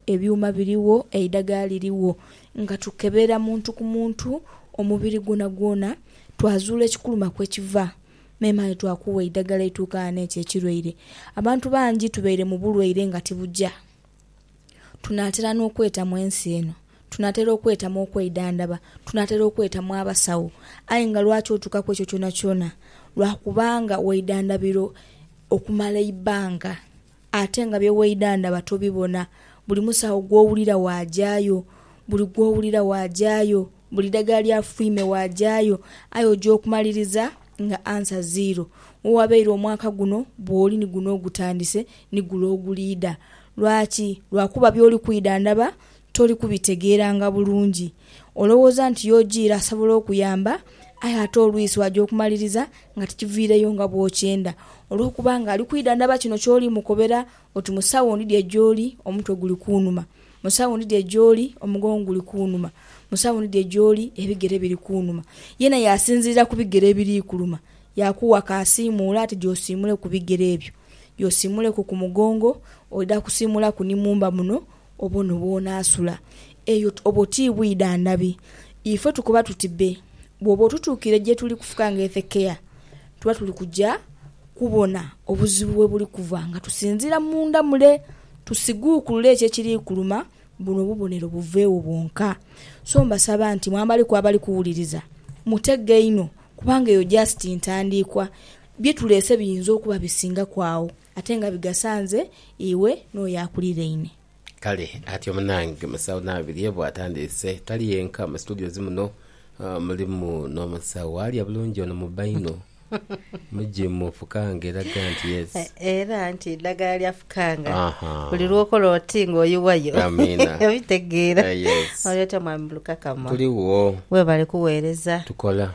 Ebyuma birigho, eidhagala lirigho nga tukebera muntu ku muntu omubiri gwonagwona twazuula ekikuluma kwe kiva memale twakuwa eidhagala eituukana n'ekyo ekirwaire. Abantu bangi tubaire mu bulwaire nga tibuja. Tunaatera n'okwetamu ensi eno, tunaatera okwetamu okweidhandhaba, tunaatera okwetamu abasawo. Aye nga lwaki otuuka ku ekyo kyonakyona? Lwa kubanga weidhandhabira okumala eibanga. Ate nga bye weidha ndaba tobibona. Buli musawo gw'owulira waagyayo. Buli gw'owulira waagyayo. Buli ddagala lya fwiime waagyayo. Aye oja okumaliriza nga ansa ziiro. We wabaire omwaka guno bw'oli ni guno ogutandise, ni gule oguliidha. Lwaki? Lwakuba by'oli kwidha ndaba Toli kubitegeeranga bulungi. Olowooza nti Yojiira asobola okuyamba, aye ate olwisi waja okumaliriza nga tikiviireyo nga bw'okyenda. Olw'okuba nga ali kwidhandhaba kino ky'oli mukobera oti, Musawo ndidhie gy'oli, omutwe guli kunuma. Musawo ndidhie gy'oli, omugongo guli kunuma. Musawo ndidhie gy'oli, ebigere biri kunuma. Yena yaasinziira ku bigere ebiri kuluma, yaakuwa ka asiimuule ati gy'osiimuleku bigere ebyo. Gy'osiimuleku ku mugongo, oidha kusiimulaku ni mumba muno, Obwo no bw'onaasula. Eyo obwo ti bwidha ndhabi. Ife tukoba tuti be. Bw'oba otutuukire gye tuli kufuka ng'ethekeya, tuba tuli kuja kubona obuzibu we buli kuva nga tusinziira munda mule tusiguukulule ekyo ekiri kuluma buno obubonero buveegho bwonka. So mbasaba nti mwambaliku abali kuwuliriza, mutege inho kubanga eyo just ntandiikwa. Bye tuleese biyinza okuba bisingaku agho. Ate nga bigasa nze, iwe n'oyo akuliraine. Kale atyo munange musawo Nabirye bw'atandiise. Tali yenka mu situdiyo zi muno, mulimu n'omusawo alya bulungi ono mu baino. Mugimu fukanga eraga nti yes. Era nti eddagala lya fukanga buli lw'okola oti ng'oyiwayo. Amiina. Obitegeera? Oli otya Mwami Mulukakama? Tuligho. Weebale kuweereza. Tukola.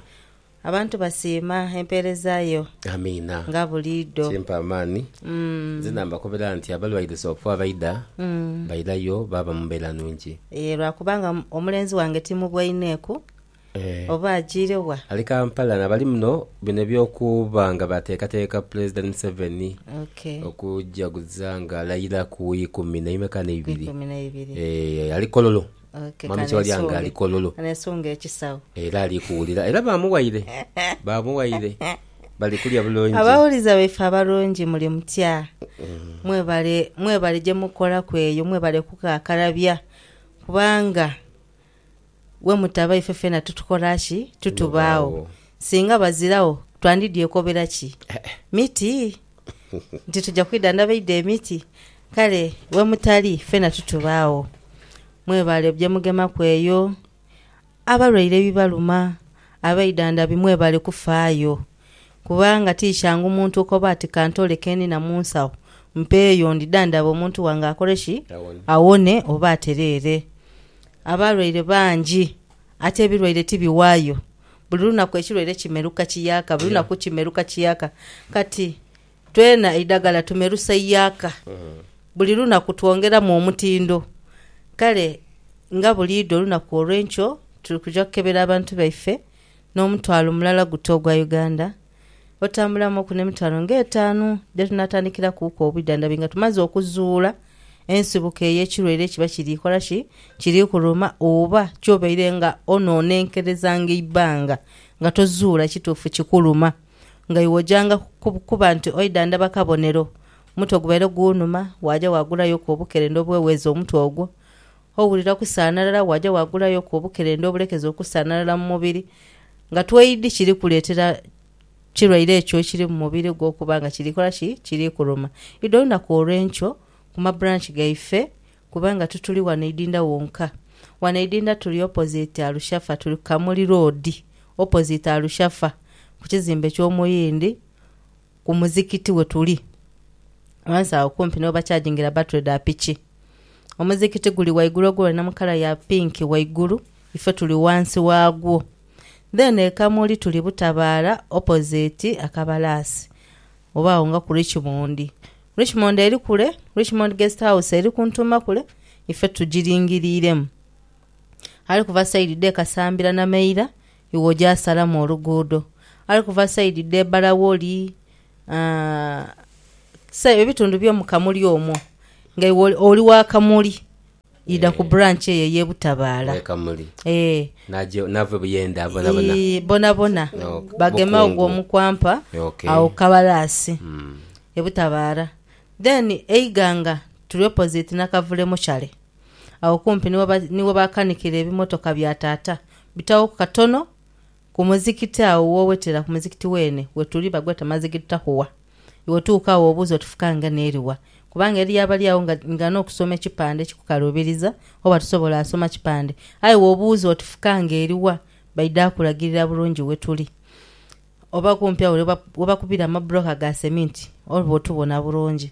Abantu basiima empeereza yo Amiina. nga buliidho. Kimpa amaani. Nzena mbakobera nti abalwaire soofo abaidha bairayo baaba mu mbeera nungi. Yee, lwakubanga omulenzi wange timubwaineku Eeh. oba ajiire wa. Ali Kampala nabali muno bino eby'okuba nga bateekateeka Pulezidenti Museveni Okay. okujaguza ng'alayira ku Ikumi naime k'aneibiri. Ikumi naibiri. Eeh, ali Kololo. Okay, Mami Kibalya nga ali kololo. Kanesunge ekisagho. Era ali kuwulira. Era ba muwaire. Ba muwaire. Bali kulya bulungi. Abawuliza baife abalungi muli mutya? Mwebale, mwebale gye mukolaku eyo. Mwebale kukakalabya. Kubanga we mutaba ife fena tutukola ki? Tutubaagho. Singa baziragho twandidyekoberaki? Miti? nti tuja kwidha ndabaidha emiti, kale wemutali fena tutubaagho. Mwebale byemugemaku eyo, abalwaire ebibaluma, abaidhandhabi mwebale kufaayo, kubanga ti kyangu muntu okoba ati kantole kenina mu nsawo mpeeyo ndidhandhabe omuntu wange akole ki? Awone oba atereere. Abalwaire bangi ate ebilwaire tibiwaayo Buli lunaku ekilwaire kimeruka kiyaaka, buli lunaku kimeruka kiyaaka. Kati twena eidagala tumerusa iyaaka. Buli lunaku twongeramu omutindo. Kale nga buliidho olunaku olw'enkyo tuli kuja kukebera abantu baife n'omutwalo mulala guta ogwa Uganda. otambulamu oku n'emitwalo ng'etaanu dhe tunaatandikirakuuku obwidhandhabi nga tumaze okuzuula ensibuko ey'ekirwaire ekiba kiri kola ki? Kiri kuluma. Oba ky'obaire nga onoonenkerezanga eibanga nga tozuula kituufu kikuluma, nga iwe ojanga kuba nti oidhandhaba kabonero. Omutwe gubaire guunuma, waaja waagulayoku obukerenda obweweza omutwe ogwo, Owulira kusaanalala waaja waagulayoku obukerenda obulekeza okusaanalala mu mubiri nga twaidhi kiri kuleetera kirwaire ekyo ekiri mu mubiri gwo okuba nga kiri kola ki? Kiri kuluma. Idho lunaku olw'enkyo ku ma branch gaife kubanga tituli wano Idinda wonka. Wano Idinda tuli opposite Arushafa, tuli ku Kamuli Road opposite Arushafa ku kizimbe ky'Omuyindi. ku muzikiti wetuli ghansi agho kumpi ni webakyajingira batule dha piki. Omuzikiti guli waigulu ogwo wena mu kala ya pinki waigulu ife tuli ghansi wagwo. Then e Kamuli tuli Butabaara opposite Akabalaasi oba agho nga ku Richmond. Richmond eri kule, Richmond Guest House eri kuntuuma kule ife tugiringiriremu. Ali kuva side dhe Kasambira Nameira Iwe oja asalamu oluguudo. Ali kuva saidi dhe Barawoli, aa, ebitundu by'omu kamuli omwo. Nga iwe oli, oli wa kamuli, idha ku branch eyo ey'e Butabaala. Owe kamuli. Ee. Naja, nava e Buyende abo bonabona? Ii, bonabona. Ok, Bagema ogwo mukungu. omukwampa Ok. agho ku kabalaasi, e Butabaala. Then e Iganga tuli opposite Nakavule Muchare. Agho kumpi ni we baakanikira ebimotoka bya taata, bitaghoku katono ku muzikiti agho w'owetera ku muzikiti weene wetuli bagweta Mazigid Taqwa. Iwe tuuka agho obuuze oti fuka ngano eri wa? Kubanga eriyo abali agho nga nga n'okusoma ekipande kikukaluubiriza oba tosobola asoma kipande. Aye w'obuuza oti fuka ng'eri wa? baidha kukulagirira bulungi wetuli. Oba kumpi agho we bakubira amabulooka ga seminti oba otubona bulungi.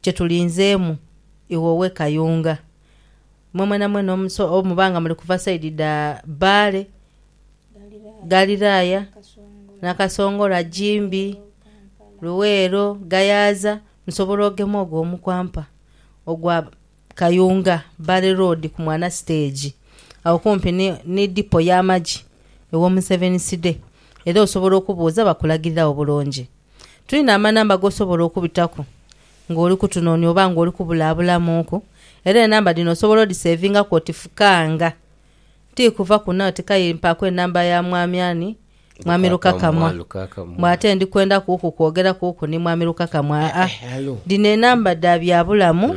Kye tulinzeemu Ighowe Kayunga. Mwe mwenamwena omuso oba muba nga muli kuva side dha Bbaale, Galiraaya, Nakasongola, Gimbi, Luweero, Gayaza musobola ogema ogwo omukwampa ogwa Kayunga, Bbaale Road ku Mwana Stage agho kumpi ni Depot y'amagye ewa Omuseveniside era osobola okubuuza bakulagirire agho bulungi. Tulina amanamba g'osobola okubitaku ng'oli kutunoonia oba ng'oli kubulaabulamuuku, era enamba dhino osobola odhiseevingaku oti Fukanga. Ti kuva kuno oti k'aye mpaaku enamba ya Mwami Ani? Mwami Lukakamwa. Mbu ate ndi kwenda kuku kwogera kuku ni Mwami Lukakamwa. Aa, dhino enamba dha bya bulamu.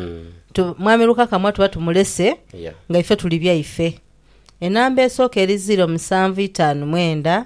Tu, Mwami Lukakamwa tuba tumulese nga ife tuli byaife. Enamba esooka eri ziiro musanvu itaanu mwenda.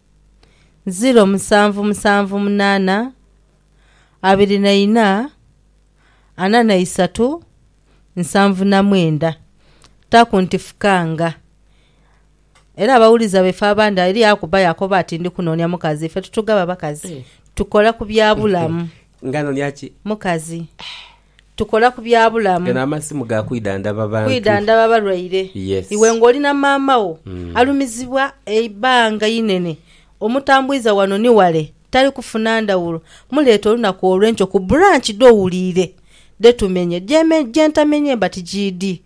ziro musanvu musanvu munaana abiri na ina ana na isatu nsanvu na mwenda taku nti fukanga era abawuliza baife abandi eriyo akuba yakoba ati ndi kunonia mukazi ife tutugaba bakazi tukola ku bya bulamu mukazi tukola ku bya bulamu. Gano amasimu ga kwidhandhaba bantu. Kwidhandhaba balwaire. Yes. Iwe ng'oli na maama wo alumizibwa eibanga einene, omutambwiza wano ni wale, tali kufuna ndhawulo, muleete olunaku olw'enkyo ku bulanki dh'owuliire dhe tumenye. Gye ntamenye mba tigiidhi.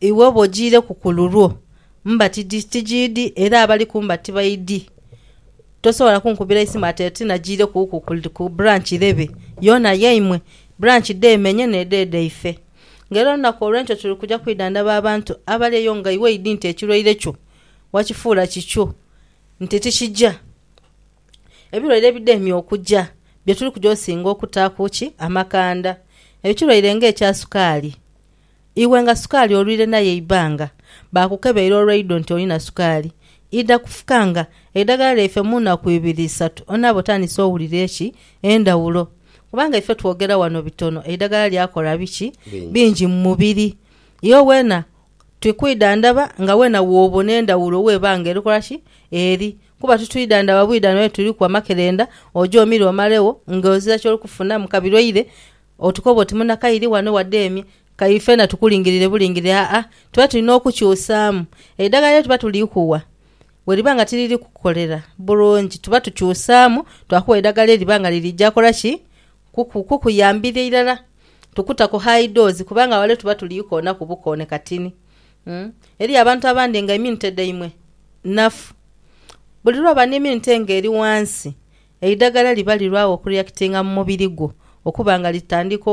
Iwe bw'ojiireku ku lulwo, mbati di? Tijiidi, era abali ku mbati baidi. Tosobola kunkubira isimu ati oti najiireku ku, ku branch irebe yoona yaimwe. Branch dheemenye n'edho edhaife. Nga era olunaku olw'enkyo tuli kuja kwidhandhaba abantu abali eyo nga iwe idi nti ekirwaire kyo wakifuula kikyo, nti tikija. Ebirwaire ebidheemye okuja bye tuli kuja osinga okutaaku ki amakanda. Ekirwaire ng'ekya sukaali. Iwe nga sukaali olwire naye eibaanga, baakukebeire olw'eidho nti olina sukaali, idha kufukanga eidagala lyaife mu naku ibiri isatu onaaba otandise owulira eki endhawulo. Kubanga ife twogera wano bitono, eidagala lyakola biki bingi mu mubiri. Iwe weena twi kwidhandhaba nga weena woobona endhawulo w'eba nga erikola ki eri. Kuba titwidhandhaba bwidha noyo tuliku amakerenda oje omire omalegho nga ozira kyoli kufuna mu kabi lwaire Otukoba oti munakairi wano wade emye kairi fena tukulingirire bulingirire aa tuba tulina okukyusaamu eidhagala lyetuba tulikuwa weriba nga tiriri kukolera bulungi tuba tukyusaamu twakuwa eidhagala eriba nga lirija kola ki kuku kukuyambira irala tukutaku high dose kubanga wale tuba tuli koonaku bukoone katini umm eriyo abantu abandi nga immunity dhaimwe nafu buli lwaba neimmunity nga eri wansi Eidagala liba lirwagho okureactinga mu mubiri gwo okuba nga litandika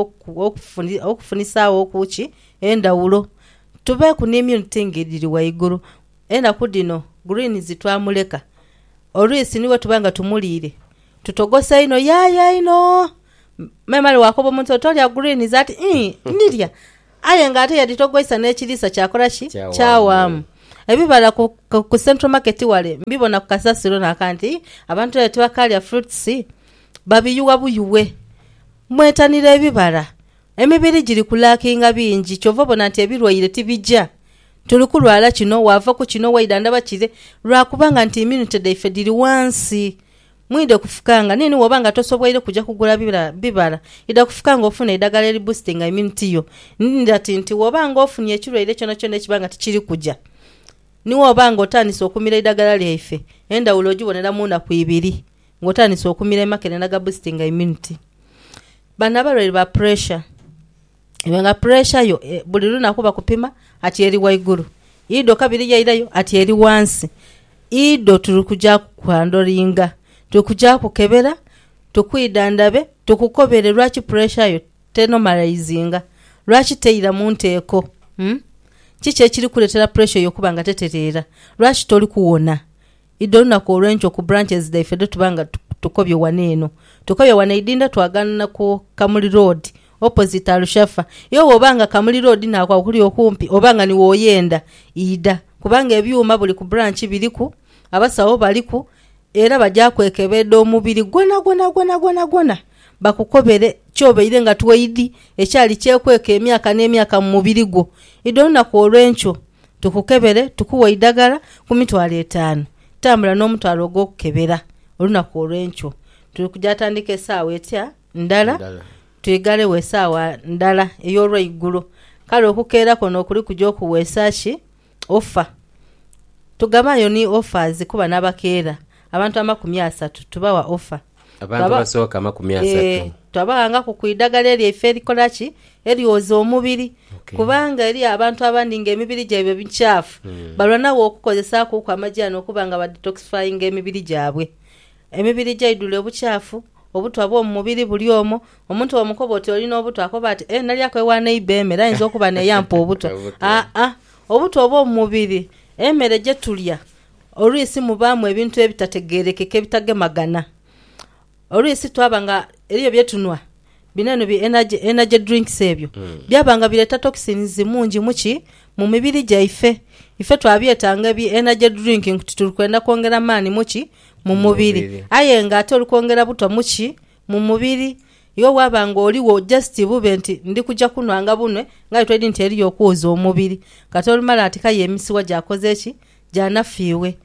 okufunisagho ku ki endhawulo. Tubeeku ni immune thing edhiri ghaigulu. Enaku dhino greens twamuleka. Olwisi ni bwetuba nga tumuliire tutogosa inho yaaya inho memale wakoba omuntu oti tolya greens ati ii ndhirya. Aye nga ate yadhitogoisa n'ekiriisa kyakola ki? Kyawaamu. Ebibala ku, ku Central Market wale mbibona ku kasasiro n'aka nti, Abantu aye tibakaalya fruits? Babiyugha buyughe. Mwetanire ebibala. Emibiri giri ku lackinga bingi, kyova obona nti ebirwaire tibija. Tuli kulwala kino, waava ku kino, waidha ndaba kire, lwa kubanga nti immunity dhaife dhiri ghansi. Mwidhe kufukanga nini woba nga tosobweire kuja kugula bibala idha kufukanga ofune eidhagala eri boostinga immunity yo nidh ati nti woba nga ofunye ekirwaire kyona kyona ekiba nga tikiri kuja ni woba nga otandise okumira eidhagala lyaife endhawulo ogibonera munaku ibiri nga otandise okumira emakerenda ga boostinga immunity Bano abalwaire ba pressure. iwe nga puresha yo buli lunaku bakupima ati eri waigulu iidho kabiri yairayo ati eri wansi, iidho tuli kuja kukwandoringa, tuli kuja kukebera, tukwidhandhabe, tukukobere lwaki puresha yo tenomalaizinga, lwaki teira mu nteeko. Kiki ekiri kukuleetera puresha eyo okuba nga tetereera? Lwaki toli kuwona? Idho olunaku olwenkyo ku branches dhaife dhetuba nga tukobye ghano eno tukobye ghano eidinda twaganana ku Kamuli Road opposite Alushafa yo bwoba nga Kamuli Road naako akuli okumpi oba nga niwo oyenda idha kubanga ebyuma buli ku branch biriku, abasawo baliku era baja kwekebedha omubiri gwonagwonagwonagwona bakukobere kyobaire nga tweidhi ekyali kyekweka emyaka n'emyaka mu mubiri gwo. Idho olunaku olwenkyo. tukukebere tukuwe eidagala ku mitwalo etaanu. Tambula n'omutwalo ogw'okukebera olunaku olw'enkyo. Tuli kuja atandika esaawa etya ndala, twigalegho esaawa ndala ey'olweigulo. Kale okukeera kwono kuli kuja okuweesa ki? Ofa. Tugabayo ni offers kuba n'abakeera. Abantu amakumi asatu tubawa offer. Abantu abasooka amakumi asatu. Twabaghangaku ku idagala elyo ife erikola ki? Eryoza omubiri. Kubanga eriyo abantu abandi ng'emibiri gyaibwe micaafu, balwanagho okukozesakuuku amajaani okuba nga badetoxifyinga emibiri gyabwe. Emibiri gyaidhule obucaafu, obutwa bw'omu mubiri buli omwo. Omuntu bw'omukoba oti oli n'obutwa akoba ati, Ee, nalyaku ewa neiba emere, ayinza okuba n'eyampa obutwa. Aa, obutwa obw'omu mubiri emere gye tulya. Olwisi mubaamu ebintu ebitategeerekeka ebitagemagana. Olwisi twaba nga eriyo bye tunhwa, bino bi energy, energy drinks ebyo, byaba nga bireeta toxins mungi mu ki? Mu mibiri gyaife. Ife twabyetanga ebi energy drink nti tuli kwenda kwongera maani mu ki? Mu mubiri. Aye nga ate oli kwongera buto mu ki? Mu mubiri. Iwe bwaba nga oligho just bube nti ndi kuja kunhwa nga bunwe, ng'aye twedi nti eriyo okwoza omubiri. Kati olumala ati k'aye emisiwa gyakoze ki? Gyanafu iwe!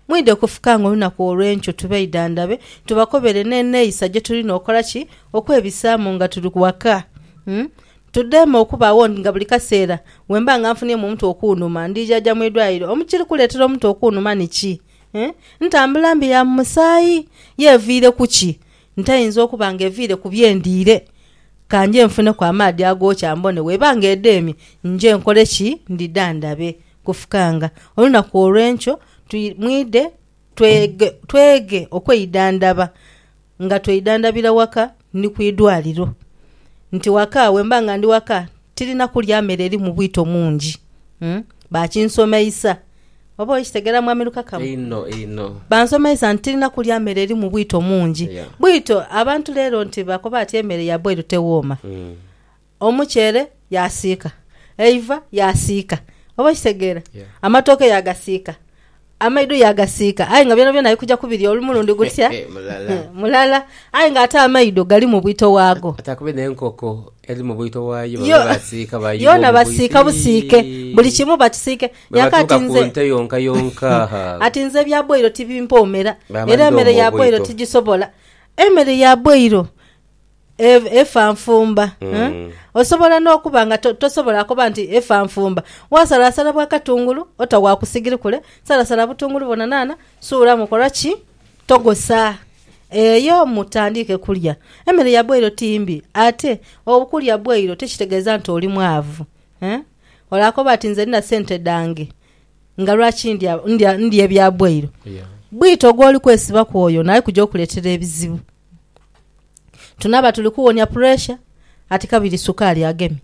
Mwidhe okufukanga olunaku olw'enkyo tubeidhandhabe, tubakobere n'eneeyisa gye tulina okola ki? Okwebisaamu nga tuli waka. Tudheeme okubaagho nga buli kaseera bwe mba nga nfuniemu omutwe okuunuma ndijaja mu idwaliro. Ekiri kuleetera omutwe okuunuma ni ki? Ntambula mbi ya mu musaayi? Ye eviire ku ki? Nte eyinza okuba nga eviire ku bye ndiire? Ka nje nfuneku amaadhi agookya mbone. Bw'eba nga edheemye, nje nkole ki? Ndhidhandhabe. Kufukanga olunaku olw'enkyo mwidhe tweghe okweidhandhaba nga tweidhandhabira waka ni ku idwaliro. Nti waka bwemba nga ndi waka tirina kulya mere erimu bwito mungi. Bakinsomeisa. Oba okitegera Mwami Lukakama? Einho einho. Bansomeisa nti tirina kulya mere erimu bwito mungi. Bwito abantu lero nti bakoba ati emere ya boil tewooma. Omuceere yaasiika, eiva yaasiika. Oba okitegeera? Amatooke yaagasiika, amaido yaagasiika. Aye nga byonabyona ali kuja kubirya olu mulundi gutya? Mulala. Aye nga ate amaido galimu bwito waago. Ate akube n'enkoko eri mu bwito waayo, baba baasiika baayuwa omubwito. Yoona basiika busiike. Buli kimu bakisiike. Bwe batuuka ku nte yonkayonka, ha! Ati nze ebya bwoiro tibimpoomera, era emere ya bwoiro tigisobola. Emere ya bwoiro Ev, Efa nfumba. Huh? Osobola n'okuba nga to, tosobola koba nti efa nfumba. Wasalasala bwa katungulu, ota wa ku sigiri kule, salasala butungulu bwona naana, suulamu, kola ki? Togosa. Eyo mutandiike kulya. Emere ya bweiro ti mbi, ate okulya bweiro tikitegeeza nti oli mwavu. Huh? Olaakoba ati, Nze ndina sente dhange, nga lwaki ndya, ndya, ndya ebya bweiro? Yeah. Bwito gw'oli kwesibaku oyo naye kuja okuleetera ebizibu. Tunaaba tuli kuwonia puresha ati kabiri sukaali agemye.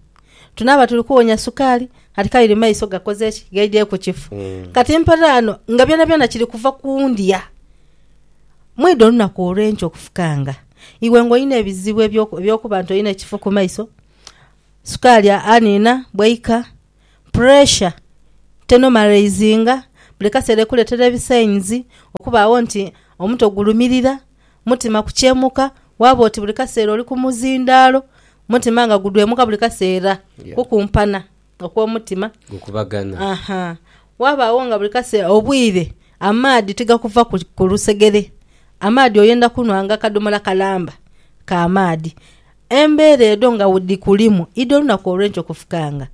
Tunaaba tuli kuwonia sukaali ati kabiri maiso gakoze ki? Gaidye ku kifu. Mm. Kati mpale ano nga byonabyona kiri kuva ku ndya. Mwidha olunaku olw'enkya okufukanga iwe ng'olina ebizibu eby'okuba nti olina ekifu ku maiso, sukaali aniina bwaika puresha tenomalaizinga buli kaseera ekuleetera ebisainizi, okubaagho nti omuto gulumirira, mutima kukyemuka, waaba oti buli kaseera oli ku muzindaalo, mutima nga gudwemuka buli kaseera, kukumpana okw'omutima, wabaagho nga buli kaseera obwire amaadhi tigakuva ku lusegere, amaadhi oyenda kunhwa nga akadhomola kalamba ka maadhi, Embeera edho nga dhikulimu idho olunaku olw'enkyo kufukanga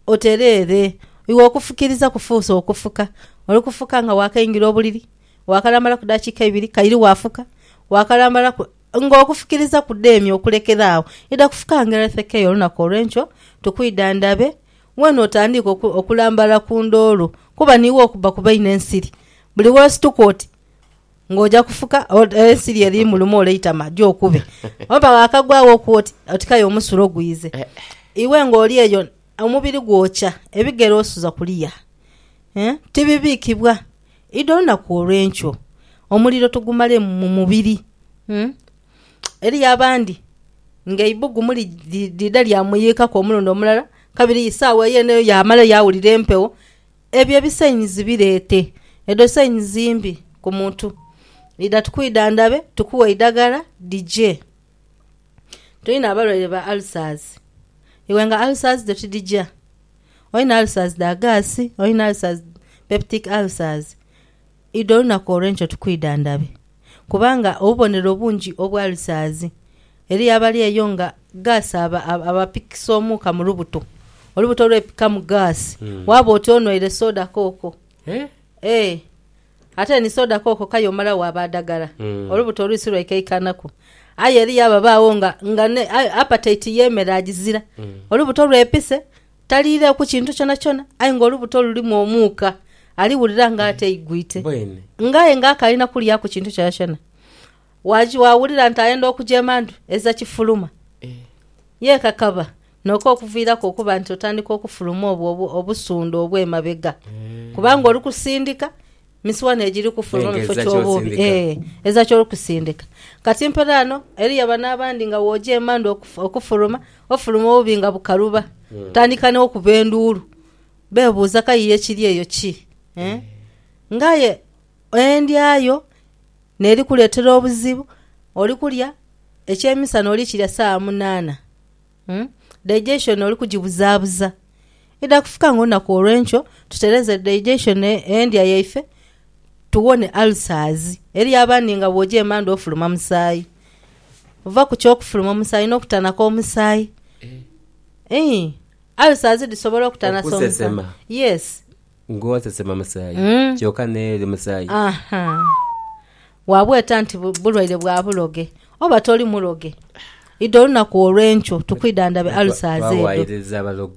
otereere. Iwe okufukiriza kufuuse okufuka. Oli kufuka nga waakaingira obuliri, waakalambalaku dakiika ibiri kaire waafuka, waakalambalaku. Ng'okufukiriza kudheemye okulekera agho, idha kufuka nga erethekeyo olunaku olw'enkyo tukwidha ndhabe weene otandiike okulambala ku ndoolo kuba niiwe okubba ku baine ensiri. Buli w'osituka oti, nga oja kufuka ensiri eri muluma oleitama jo okube oba wakagwa wo okuwa oti otikayo omusuro gwize iwe nga oli eyo omubiri gwokya ebigere osuza kuliya eh tibibikibwa idi olunaku olwenkyo omuliro tugumale mu mubiri umm eriyo abandi nga eibugumu li lidha lya muyikaku omulundi omulala kabiri sawa yene eyo yamala yawulira empegho. Ebyo ebisainizi bireete. Edho sainizi mbi ku muntu. Idha tukwidhandhabe tukuwe eidagala dhije. Tulina abalwaire ba ulcers. Iwe nga ulcers dho tidhija? Olina ulcers dha gaasi, olina ulcers, peptic ulcers. Idha olunaku olw'enkyo tukwidhandhabe, kubanga obubonero obungi obwa lisaazi, eriyo abali eyo nga gaasi aba, abapikisa omuuka mu lubuto, olubuto lwepikamu gaasi, waaba oti onwaire soda kooko. Ee, ate ni soda kooko k'aye omala waaba adagala, olubuto olwisi lwaikaikanaku. Aye eriyo ababaagho nga, nga ne, aye appetite y'emere agizira, olubuto lwepise, Taliireeku kintu kyonakyona, aye ng'olubuto lulimu omuuka, aliwulira ng'ateigwite. Nga aye ng'akalina kulyaku kintu kyonakyona, waawulira nti ayenda okujeema ndhu eza kifuluma. Yeekakaba noka okuviiraku okuba nti otandika okufuluma obwo obusundhu obw'emabega, kubanga oli kusindika Misiwani egiri kufuluma mu kifo ky'obuubi, ee, eza ky'oli kusindika. Kati mpore ghano, eriyo bano abandi nga bw'oja emandhu okufuluma, ofuluma obuubi nga bukaluba. Tandika n'okuba enduulu, beebuuza kayiire ekiri eyo ki? Ee, nga aye endya yo n'eri kuleetera obuzibu, oli kulya eky'emisana oli kirya saawa munaana. Digestion oli kugibuzabuza. Idha kufika nga olunaku olwenkyo tutereeze digestion endya yaife tuwone ulcers. Eriyo abandi nga bwoja emandhu ofuluma musaayi. Ova ku ky'okufuluma omusaayi n'okutanaka omusaayi. Ii, ulcers dhisobola okutanasa omusaayi. Okusesema. Yes. Ng'osesema musaayi kyoka n'eri musaayi. Aha. Waabweta nti bulwaire bwa buloge, oba toli muloge, idha olunaku olw'enkyo tukwidhandhabe ulcers edho.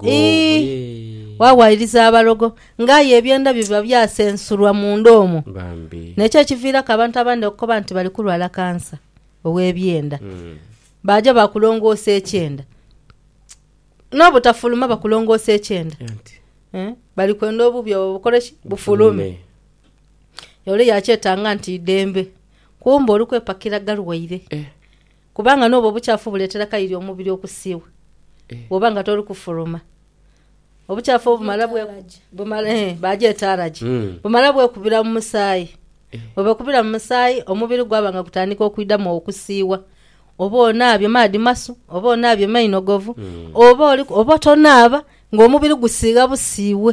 Ii, Waawaayiriza abalogo, ng'aye ebyenda byo biba byasensulwa munda omwo. N'ekyo ekiviiraku abantu abandi okukoba nti bali kulwala kansa ow'ebyenda. Baaja baakulongoosa ekyenda. N'obutafuluma bakulongoosa ekyenda. Bali kwenda obubi obwo bukole ki? Bufulume. Ole yaakyetanga nti idembe, kumbe oli kwepakira galwaire. Kubanga n'obwo obukyafu buleetera kaire omubiri okusiiwa bw'oba nga toli kufuluma. Obukyafu obumala bwekubira, bagyeta alaje, bumala bwekubira mu musaayi. Bwe bwekubira mu musaayi, omubiri gwaba nga gutandika okwidhamu okusiiwa. Oba onaabye maadhi masu, oba onaabye mainogovu, oba tonaaba, ng'omubiri gusiigha busiiwe.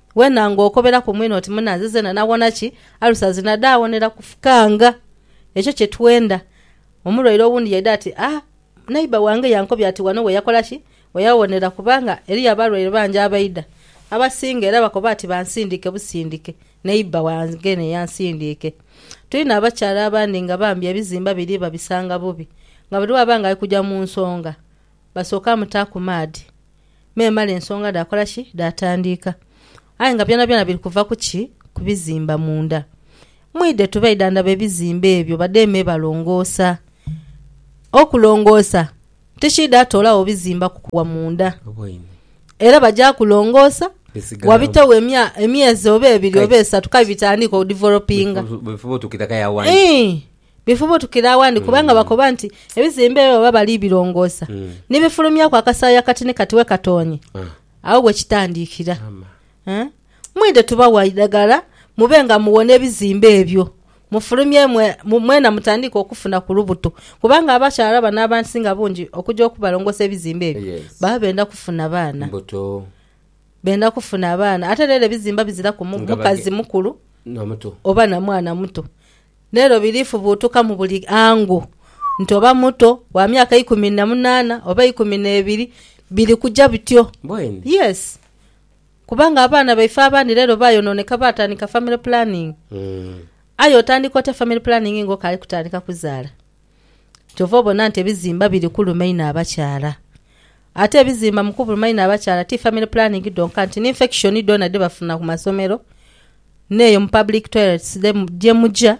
Wena nga okobera ku mwine oti munanze zena nawona ki alusa zina dhawonera kufukanga ekyo kye twenda. Omulwaire owundi yaidha ati ah neighbour wange yankobya ati wano we yakola ki we yawonera kubanga eriyo abalwaire bangi abaidha abasinga era bakoba ati bansindike busindike neighbour wange ne yansindiike. Twine abakyala abandi nga bambi ebizimba biri babisanga bubi nga buli waba nga ali kuja mu nsonga Basooka mutaaku maadhi memale ensonga dhaakola ki? Dhaatandiika. Aye nga byonabyona biri kuva ku ki? Ku bizimba munda. Mwidhe tube idhandhaba ebizimba ebyo badheeme me balongoosa. Okulongoosa tikiidha toolagho bizimba kukugha munda. Era baja kulongoosa, wabitegho emyezi oba ebiri oba esatu kaye bitandiike odivelopinga. Bwebifuba otuukira kale agho agho. Ii. Bifubutukira awandi kubanga bakoba nti ebizimba ebyo baba bali birongoosa ni bifulumyaku akasaayi akati ni kati wekatoonye. Agho we kitandikira. Mwidhe tubawa eidhagala mube nga muwona ebizimba ebyo, mufulumye mwena mutandiike okufuna ku lubuto kubanga abakyala bano abasinga bungi okuja okubalongoosa ebizimba ebyo baba benda kufuna baana. Benda kufuna abaana. Ate rero ebizimba biziraku mukazi mukulu oba na mwana muto. Lero birifubuutuka mu buli angu nti oba muto, wa myaka ikumi na munaana oba eikumi n'ebiri, biri kuja bityo. Bweni. Yes. Kubanga abaana baife abandi lero bayonooneka baatandika family planning. Aye otandika otya family planning ng'okaali kutandika kuzaala? Kyova obona nti ebizimba biri kuluma inho abakyala. Ate ebizimba mu kubuluma inho abakyala ti family planning dhonka nti ni infection dhona dhe bafuna ku masomero n'eyo mu public toilets gye muja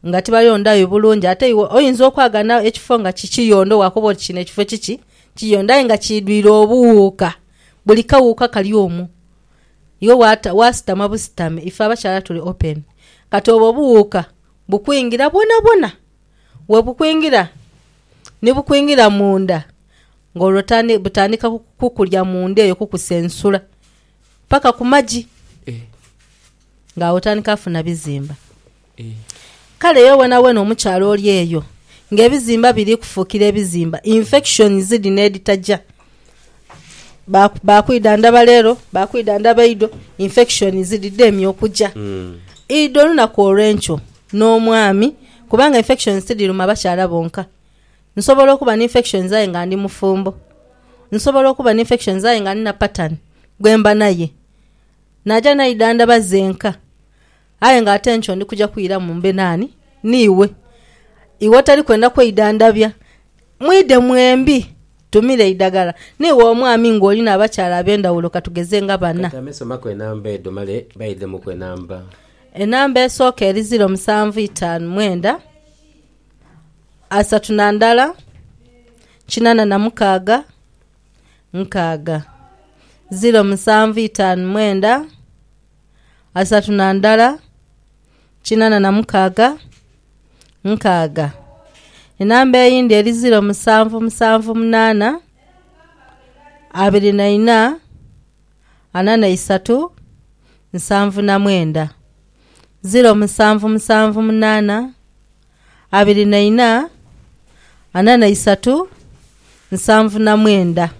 nga tibayondhagho bulungi. Ate iwe oyinza okwagana ekifo nga ki kiyondho waakoba oti kino ekifo kiki kiyondho aye nga kiidhwire obuwuuka, buli kawuuka kali omwo. Iwe waasitama busitami, ife abakyala tuli open. Kati obwo obuwuuka bukwingira bwonabwona, webukwingira ni bukwingira munda ng'olwo butandika kukulya munda eyo kukusensula paka ku magi ng'agho otandika kufuna bizimba. Kale iwe wenawena omukyala oli eyo ng'ebizimba biri kufukira ebizimba, infections dhino edhitaja. ba kwidha ndaba lero ba kwidha ndaba idho infection ziri dhemye okuja mm. idho olunaku olwenkyo n'omwami kubanga infections tidhiruma bakyala bonka nsobola okuba ni infections aye nga ndi mufumbo nsobola okuba ni infections aye nga nina pattern gwemba naye naja naidha ndaba zenka Aye nga ate nkyo ndi kuja kwiramu mbe naani n'iwe. Iwe otali kwenda kweidhandhabya, mwidhe mwembi tumire eidagala. N'iwe omwami ng'oli n'abakyala ab'endhawulo ka tugeze nga bana. Kati ame somaku enamba edho male baidhemuku enamba. Enamba esooka eri ziro musanvu itaanu mwenda asatu na ndala kinana na mukaaga nkaaga. Ziro musanvu itaanu mwenda. asatu na ndala, kinana na mukaaga, nkaaga. Enamba eyindi eri ziro musanvu musanvu munana, abiri na ina, ana na isatu, nsanvu na mwenda. Ziro musanvu musanvu munana. abiri na ina, ana na isatu, nsanvu na mwenda.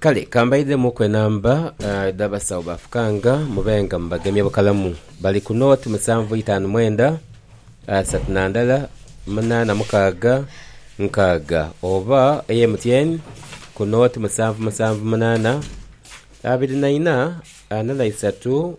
Kale ka mbaidhemuuku enamba edh'abasawo ba Fukanga, mube nga mubagemye bukalamu. Bali ku nooti musanvu itaanu mwenda, asatu na ndala, munaana mukaaga, nkaaga. Oba ey'MTN ku nooti musanvu musanvu munaana, abiri na ina, ana na isatu.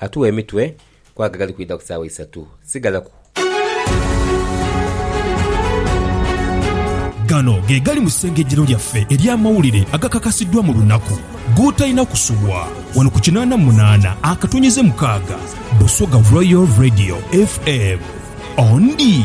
Atuwa emitwe kwago agali kwidha ku saawa isatu. Sigala ku. Gano ge gali mu isengejjero lyaffe ery'amawulire agakakasiddwa mu lunaku. Gootalina kusubwa. Wano ku kinaana mu munaana akatonnyeze mukaaga, Busoga Royal Radio FM. Ondi.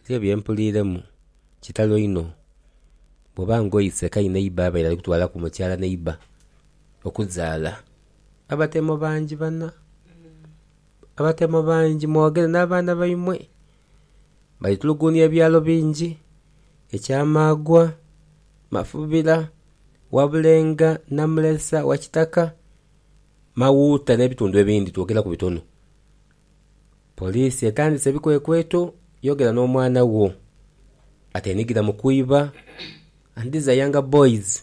Nze bye mpuliiremu kitalo inho. Bwoba nga oise ka ineiba abaire ali kutwalaku mukyala neiba okuzaala, abatemo bangi bana, abatemo bangi mwogere n'abaana baimwe. Bali tulugunia ebyalo bingi, ekyamaagwa, mafubira, wabulenga, namulesa, wakitaka, mawuuta n'ebitundu ebindi twogeraku bitono. Poliisi etandise ebikwekweto, Yogera n'omwana wo ateenhigira mu kwiba and these are younger boys,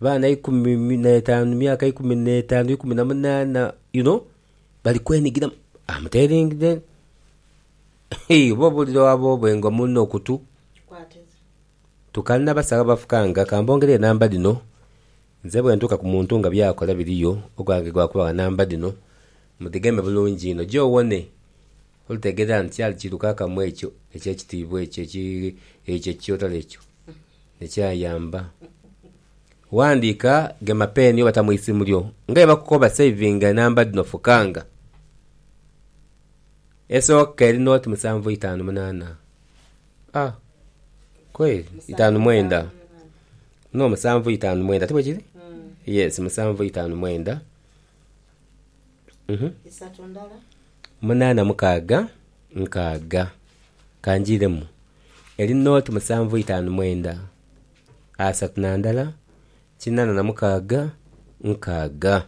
baana ikumi n'etaanu, myaka ikumi n'etaanu, ikumi na munaana you know bali kwenhigiramu. Am telling them hii oba obuulira owa boobwe nga omulina okutu. Tukanha basawo abafukanga, ka mbongere enamba dhino nze bwe ntuuka ku muntu nga by'akola biriyo ogwange gwa kubawa namba dhino Mudhigeme bulungi inho je owone. Olitegeera nti kyali kirukakamu ekyo eky'ekitiibwa ekyo ekyo ekikyotole ekyo ne kyayamba. Ghandiika, gema peeni oba ta mu isimu lyo nga bwe bakukoba savinga enamba dhino fukanga, esooka eri nooti musanvu itaanu munaana, a kweli? itaanu mwenda, no musanvu itaanu mwenda, ti bwe kiri? Yes, musanvu itaanu mwenda. munaana mukaaga nkaaga. Kangiiremu eri nooti musanvu itaanu mwenda asatu na ndala kinaana na mukaaga nkaaga.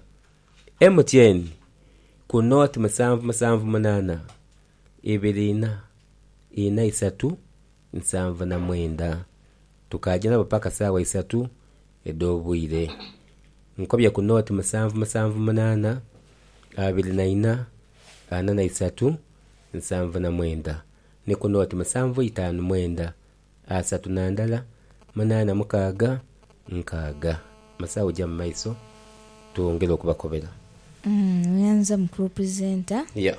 MTN ku nooti musanvu musanvu munaana ibiri inha inha isatu nsanvu na mwenda, tukaaja nabo paka saawa isatu edh'obwire. Nkobye ku nooti musanvu musanvu munaana, abiri na ina, ana na isatu, nsanvu na mwenda, ni ku nooti musanvu itaanu mwenda, asatu na ndala, munaana mukaaga, nkaaga. Mu saawa eja mu maiso twongere okubakobera. Nyanza mukulu presenter. Yeah.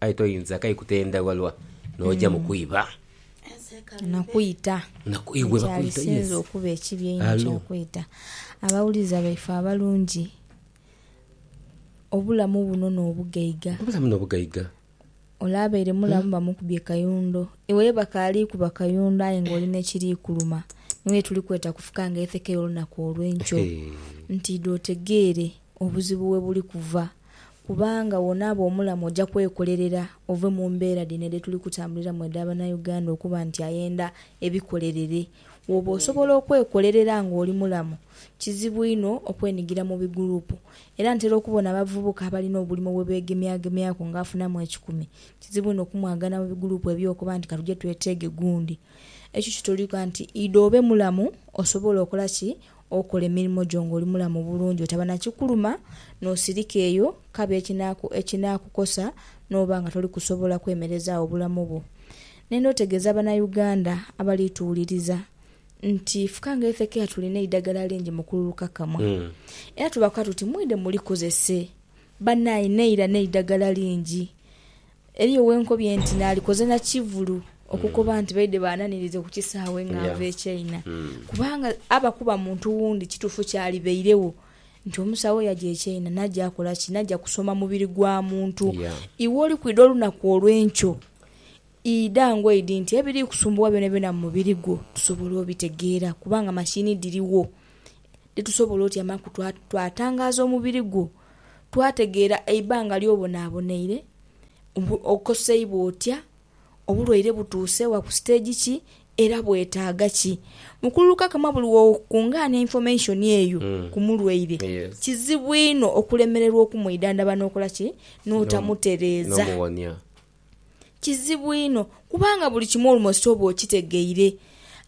Aye toyinza kai kutenda walwa noja mu kwiba. Na kwita. Ekyalisinze okuba ekibi einho kya kwita. Abawuliza baife abalungi, obulamu buno n'obugaiga. Obulamu n'obugaiga. Ole abaire mulamu bamukubye kayundo, iwe ye bakaali kuba kayundo aye ng'oli n'ekiri kuluma. Niwo ye tuli kweta kufuka ng'etheke y'olunaku olw'enkyo nti idho otegeere obuzibu we buli kuva. kubanga woonaaba omulamu oja kwekolerera ove mu mbeera dhino dhe tuli kutambuliramu edha Banauganda okuba nti ayenda ebikolerere. Wooba osobola okwekolerera nga oli mulamu, kizibu inho okwenigira mu biguruupu. Era ntera okubona abavubuka abalina obulimo bwe beegemyagemyaku nga afunamu ekikumi, kizibu inho okumwagana mu biguruupu eby'okuba nti katuje tweteege gundi. Ekyo kitulaga nti idha obe mulamu osobole okola ki? Okola emirimo gyo ng'oli mulamu bulungi, otaba na kikuluma, n'osirika eyo kabi ekinaakukosa n'oba nga toli kusobola kwemerezaagho bulamu bwo. Nenda otegeeza Banauganda abali tuwuliriza nti fka nga ife kea tulina eidagala lingi mu kululuka kamwa. Era tubakoa tuti mwidhe mulikozese. Banae neira n'eidagala lingi. Eriyo we nkobye nti naalikoze na kivulu okukoba nti baidhe baananirize ku kisaawe nga nva e China kubanga aba kuba muntu wundi kituufu kyalibairegho nti omusawo yaja e China naja akola ki? Naja kusoma mubiri gwa muntu. Iwe oli kwidha olunaku olwenkyo idha ngoidi nti ebiri kukusumbuwa byonabyona mu mubiri gwo tusobole obitegeera kubanga mashini dhirigho dhetusobola otyamaku twatangaaza omubiri gwo. twategeera eibanga ly'obonaabonaire, okoseibwa otya, obulwaire butuuse wa ku siteegi ki era bwetaaga ki. Mukulu Lukakama buli w'okungaana information eyo ku mulwaire, kizibu inho okulemererwa okumwidhandhaba n'okola ki, n'otamutereeza. Kizibu inho, kubanga buli kimu olumoso oba okitegeire.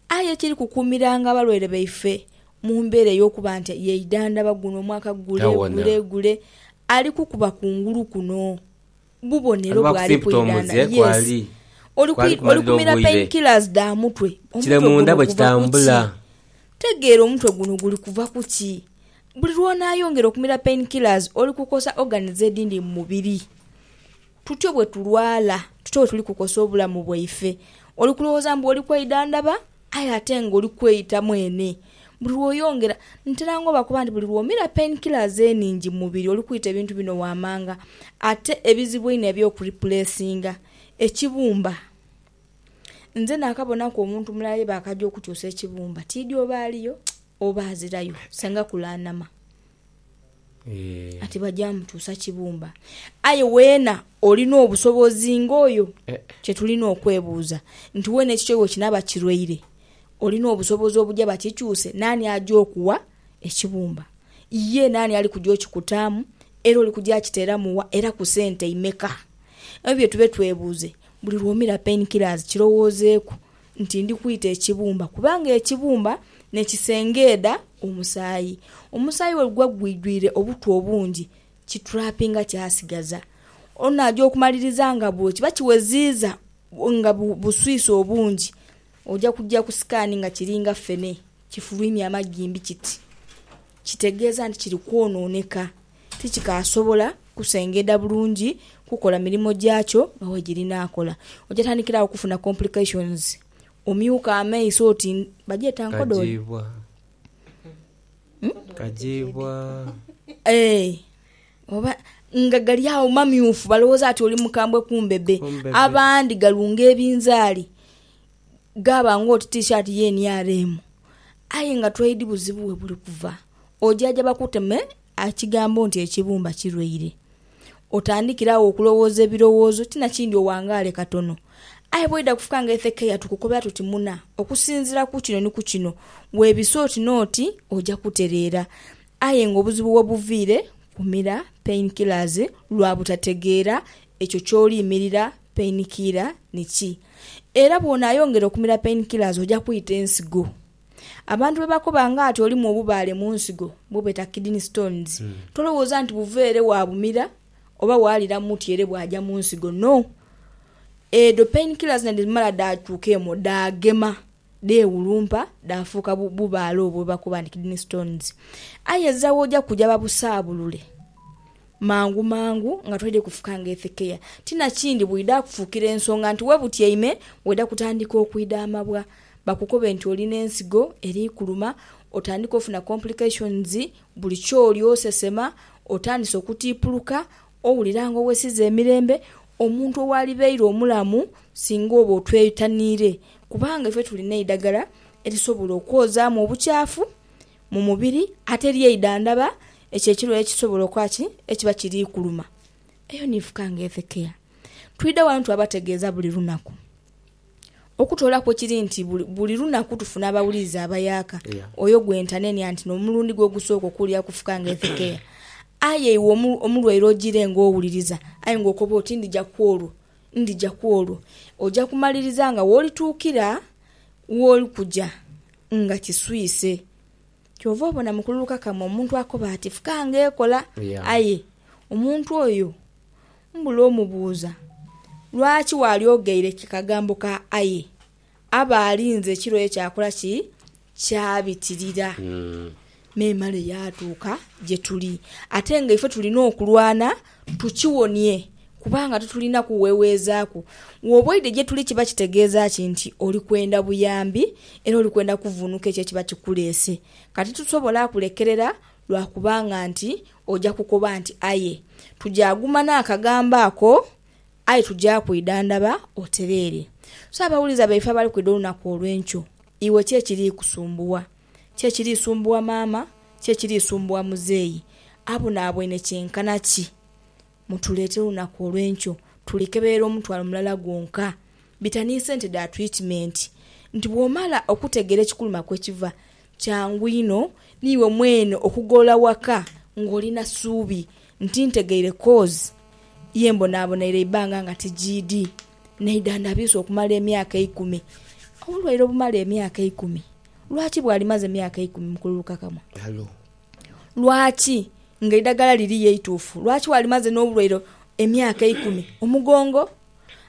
Aye ekiri kukuumiranga abalwaire baife mu mbeera ey'okuba nti yeidhandhaba guno omwaka gule gule gule, ali kukuba ku ngulu kuno bubonero bw'ali kwidhandha. Yes. Oli, oli kumira painkillers dha mutwe. Omutwe guno guva ku ki? Tegeera omutwe guno guli kuva ku ki. Buli lw'onaayongera okumira painkillers, oli kukosa organs edhindi mu mubiri. Tutyo bwe tulwala, tutyo bwe tuli kukosa obulamu bwaife. Oli kulowooza mbu oli kweidhandhaba aye ate ng'oli kweyita mwene. Buli lw'oyongera, ntera nga obakoba nti buli lw'omira pain killers enhingi mu mubiri oli kwita ebintu bino waamanga. Ate ebizibu einho eby'okuripulesinga ekibumba. Nze naakabonaku omuntu mulala ye baakaja okukyusa ekibumba, tiidhi oba aliyo oba azirayo, Senga kulaanhama. Ati baja mutuusa kibumba. Aye weena olina obusobozi ng'oyo? Kye tulina okwebuuza nti, weena ekikyo bwe kinaaba kirwaire, olina obusobozi obuja bakikyuse? Naani aja okuwa ekibumba? Ye naani ali kuja okikutaamu? Era oli kuja akiteeramu wa, era ku sente imeka? Ebyo bye tube twebuuze. Buli lw'omira Pain Killers kirowoozeeku. nti ndi kwita ekibumba, kubanga ekibumba ni kisengeedha omusaayi. Omusaayi bwe guba gwidhwire obutwa obungi, kiturapinga kyasigaza. Onaja okumaliriza nga bwo kiba kiweziiza nga buswisi obungi, oja kuja ku sikaani nga kiringa ffene, kifulwimya amagimbi kiti. Kitegeeza nti kiri kwonooneka. tikikaasobola kusengedha bulungi kukola mirimo gyakyo nga bwegirina akola. Oja tandikira agho kufuna complications, omyuka amaiso oti bagyeta nkodooli? Eeh oba nga gali agho mamyufu balowooza ati oli mukambwe kumbe be abandi galunga ebinzaali. gaaba ng'oti tishaati ye NRM, aye nga twedi buzibu we buli kuva. Ojaja bakuteme ekigambo nti ekibumba kirwaire, otandikire agho okulowooza ebirowoozo, ti na kindi owangaale katono. Aye bw'oidha kufuka nga Hezekia tukukobera tuti muna, okusinziira ku kino ni ku kino, weebise oti n'oti, oja kutereera. Aye ng'obuzibu we buviire kumira painkillers lwa butategeera Ekyo ky'oli mirira painkiller ni ki? Era bw'onaayongera okumira painkillers oja kwita ensigo. Abantu bwe bakoba ng'ati olimu obubaale mu nsigo bwebeta kidney stones, tolowooza nti buva ere waabumira oba waalira muti ere bwaja mu nsigo. No. Edho painkillers naidhemala dhaakyuka emwo dhaagema. dheewulumpa dhaafuuka bubaale obwo bwe bakoba nti kidney stones. Aye ezira w'oja kuja babusaabulule mangu mangu nga toidhe kufuka nga ethekeya. Ti na kindi bwidha kufuukira ensonga nti we butyaime weidha kutandika okwidhaamabwa, bakukobe nti oli n'ensigo eri kuluma, otandike ofuna complications, buli ky'oli osesema, otandise okutiipuluka, Owulira nga owesiza emirembe omuntu owalibeire omulamu singa oba otwetaniire kubanga ife tuli n'eidagala erisobola okwozaamu obukyafu mu mubiri ate eryeidhandhaba ekyo ekirwaire ekisobola okuba ki? ekiba kiri kuluma. Eyo niifuka nga Health Care. Twidha wano twabategeeza buli lunaku. Okutoolaku ekiri nti buli lunaku tufuna abawuliriza abayaaka, oyo gwe ntanenia nti n'omulundi gwe ogusooka okuwulira kufuka nga ethekeya. Aye iwe omulwaire ojiire nga owuliriza aye nga okoba oti ndija ku olwo, ndija ku olwo, oja kumaliriza nga w'olituukira w'oli kuja nga kiswise. Kyova obona mu kululu kakama omuntu akoba ati fuka ng'ekola, aye omuntu oyo mbula omubuuza lwaki waali oghaire ku kagambo ka aye. Aba alinze ekiro oyo kyakola ki? Kyabitirira memale yaatuuka gye tuli. Ate nga ife tulina okulwana Tukiwonie, kubanga titulina kuweweezaaku. Wooba oidhe gye tuli kiba kitegeeza ki nti oli kwenda buyambi era oli kwenda kuvvuunuka ekyo ekiba kikuleese? Kati titusobola kulekerera lwa kubanga nti oja kukoba nti aye. Tuja guma n'akagambo ako, aye tuja kwidhandhaba otereere. So abawuliza baife abali kwidha olunaku olw'enkyo, iwe ki ekiri kusumbugha? ki ekiriisumbuwa maama, ki ekiriisumbuwa muzeeyi, abonabwene kyenkana ki. Mutuleetere olunaku olw'enkyo, tulikeberera omutwalo mulala gwonka. Bita ni sente dha twitimenti. Nti bw'omala okutegeera ekikuluma kwekiva, kyangu inho niiwe mwene okugolola waka ng'oli na suubi nti ntegeire kozi ye mbonabonaire eibbanga nga tijiidhi, n'eidhandhabiisa okumala emyaka eikumi. Obulwaire obumala emyaka eikumi. Lwaki bw'alimaze myaka eikumi mu kululukakamwa? Lwaki nga eidagala liri ye eituufu? Lwaki bw'alimaze n'obulwaire emyaka eikumi? Omugongo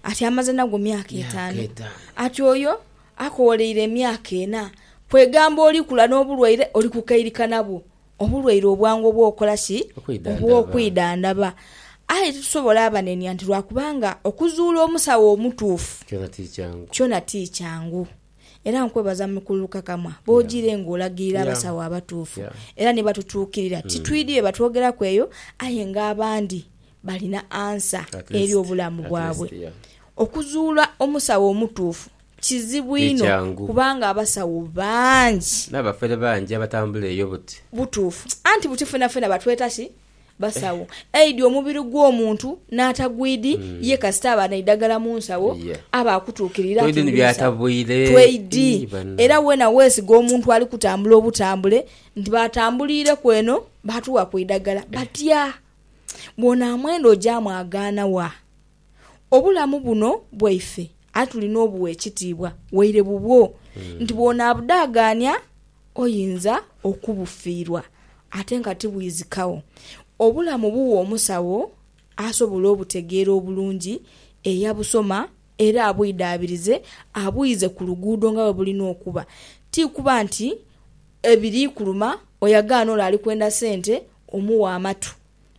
ati amaze nagwo myaka etaanu, ati oyo akowooleire emyaka ena. Kwegamba oli kula n'obulwaire, oli kukairika nabwo, obulwaire obwangu obw'okola ki? Obw'okwidhandhaba. Aye titusobola abanenia nti lwa kubanga okuzuula omusawo omutuufu kyona ti kyangu. Era nkwebaza Mukululukakamwa bw'ojiire ng'olagirira abasawo abatuufu era ni batutuukirira. Titwidi bye batwogeraku eyo, aye ng'abandi balina ansa eri obulamu bwabwe. Okuzuula omusawo omutuufu kizibu inho kubanga abasawo bangi. N'abafere bangi abatambula eyo buti. Butuufu. Anti buti fenafena batweta ki? basawo aidhi omubiri gw'omuntu n'atagwidhi ye kasita aba n'eidagala mu nsawo aba akutuukirira nti ndi musawo. Tweidhi. Era weena weesiga omuntu ali kutambula obutambule nti baatambuliireku eno baatugha ku idagala. Batya? Bw'onaamwenda oja mwagaana wa? Obulamu buno bwaife aye tulina obugha ekitiibwa waire bubwo nti bw'onaabudhaagaania oyinza okubufiirwa ate nga tibwizikagho. Obulamu bugha omusawo asobola obutegeera obulungi, eyabusoma era abwidhaabirize abwiize ku luguudo nga bwe bulina okuba. Ti kuba nti ebiri kuluma oyo agaana ole ali kwenda sente omughe amatu.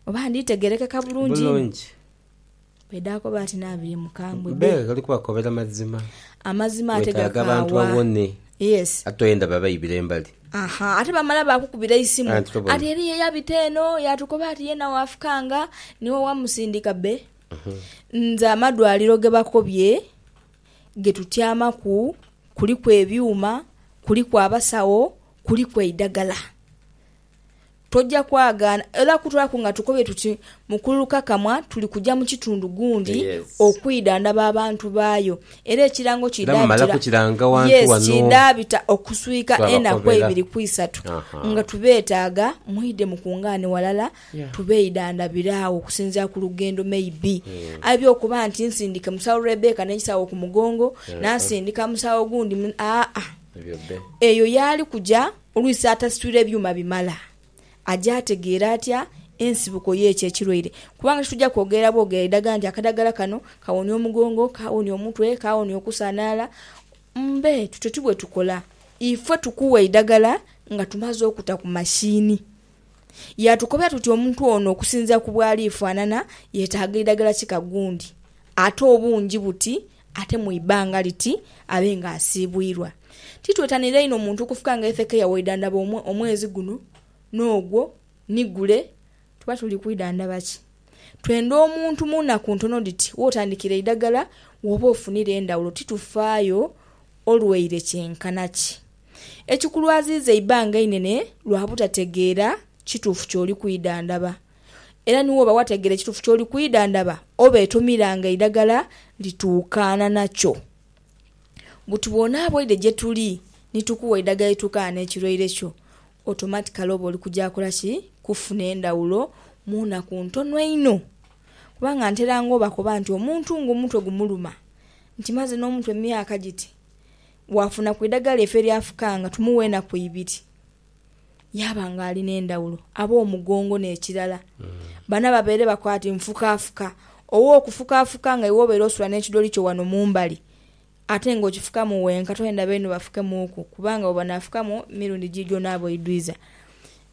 Oba nditegeerekeka bulungi inho? Bulungi. Bwedaakoba ati n'abiri mukambwe be. Be, ghali kubakobera mazima. Amazima ate Weetaaga abantu gakaawa. bawone. Yes. Ate toyenda babaibire mbali. Aha, ate bamala baakukubira eisimu Anti tobona. ati eriyo eyabita eno yaatukoba ati yeena waafukanga niwe wamusindika. Be, nze amadwaliro ge bakobye ge tutyamaku kuliku ebyuma, kuliku abasawo, kuliku eidagala. Toja kwagaana era kutwalaku nga tukobye tuti Mukulu Lukakamwa tuli kuja mu kitundu gundi okwidhandhaba abantu baayo era ekirango kidhaabita okuswika enaku eibiri ku isatu nga tubeetaaga mwidhe mukungaane walala tubeidhandhabire agho okusinziira ku lugendo maybe aidha okuba nti nsindike Musawo Rebecca n'ekisawo ku mugongo nansindika musawo gundi aa eyo yaali kuja Olwisi atasitwire byuma bimala, aja ategeera atya ensibuko y'ekyo ekirwaire? Kubanga titwija kwogerera bwogerera idagala nti akadagala kano kawonia omugongo, kawonia omutwe, kawonia okusanhaala. Mbe, tutyo ti bwe tukola. Ife tukuwa eidagala nga tumaze okuta ku mashiini. Yaatukobera tuti omuntu ono okusinziira ku bw'ali faanana, yetaaga idagala kika gundi, ate obungi buti, Ate mu ibanga liti abe nga asiibwirwa. Titwetanira inho muntu kufuka nga Hezekia waidhandhaba omwezi guno n'ogwo ni gule. Tuba tuli kwidhandhaba ki? Twenda omuntu mu naku ntono dhiti w'otandikira eidhagala w'oba ofunira endhawulo. Titufaayo olwaire kyenkana ki. Ekikulwaziiza eibanga einene lwa butategeera kituufu ky'oli kwidhandhaba. Era ni woba wategeera ekituufu ky'oli kwidhandhaba, oba etomira nga eidhagala lituukaana nakyo. Buti bw'onaaba oidhe gye tuli ni tukuwa eidhagala erituukaana n'ekirwaire kyo, otomatikali oba oli kuja kola ki? Kufuna endhawulo mu naku ntono einho. Kubanga nteranga obakoba nti omuntu ng'omutwe gumuluma, nti maze n'omutwe myaka giti, bw'afuna ku idhagala ife ly'afukanga tumuwa enaku ibiri. yaaba ng'ali n'endhawulo, abe omugongo n'ekirala. Bana babeere bakwate nfukaafuka. Owe okufukaafuka nga iwe obeere osula n'ekidoli kyo wano mu mbali ate ng'okifukamu wenka, toyenda beenu bafukemuuku kubanga bwe banaafukamu emirundi giijo onaabe oidwiza.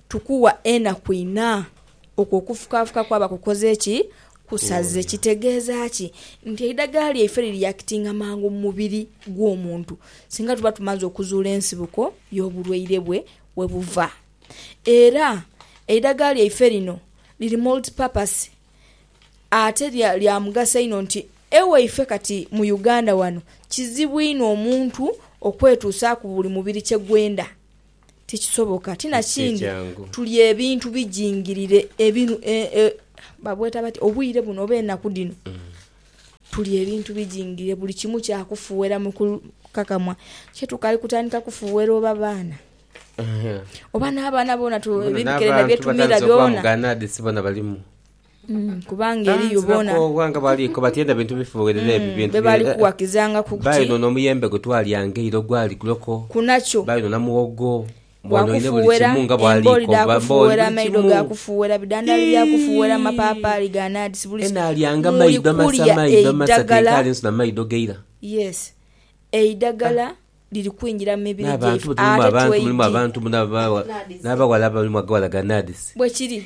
Tukuwa enaku inha okwo okufukaafuka kwaba kukoze ki? Kusaze kitegeeza ki nti eidagala lyaife liriyakitinga mangu mu mubiri gw'omuntu singa tuba tumaze okuzuula ensibuko y'obulwaire bwe we buva. Era eidagala lyaife lino liri multipurpose ate lya mugaso inho nti ewaife kati mu Uganda wano kizibu inho omuntu okwetuusaaku buli mubiri kye gwenda Ti kisoboka. Ti na kindi, tuli ebintu bijingirire ebinu, e, e, babweta batya, obwire buno oba enaku dhino. Tuli ebintu bijingirire, buli kimu kya kufuuhera mu kukakamwa. Kyo tukali kutandika kufuuhera oba baana. Oba n'abaana boona tu, Bona ebibikere na n'abantu byetumira batandise okuba mu byona. ga NAADS bona balimu. Kubanga eriyo bona be bali kuwakizanga ku kuti kunakyo, bwa kufuuwera embooli dha kufuuwera, amaido ga kufuuwera, bidhandhali bya kufuuwera, mapaapaali ga nadisi, buli kimu. Muli kulya eidagala. Yes. Eidagala liri kwingira mu mibiri gyaife ate tweidhie. Bwekiri.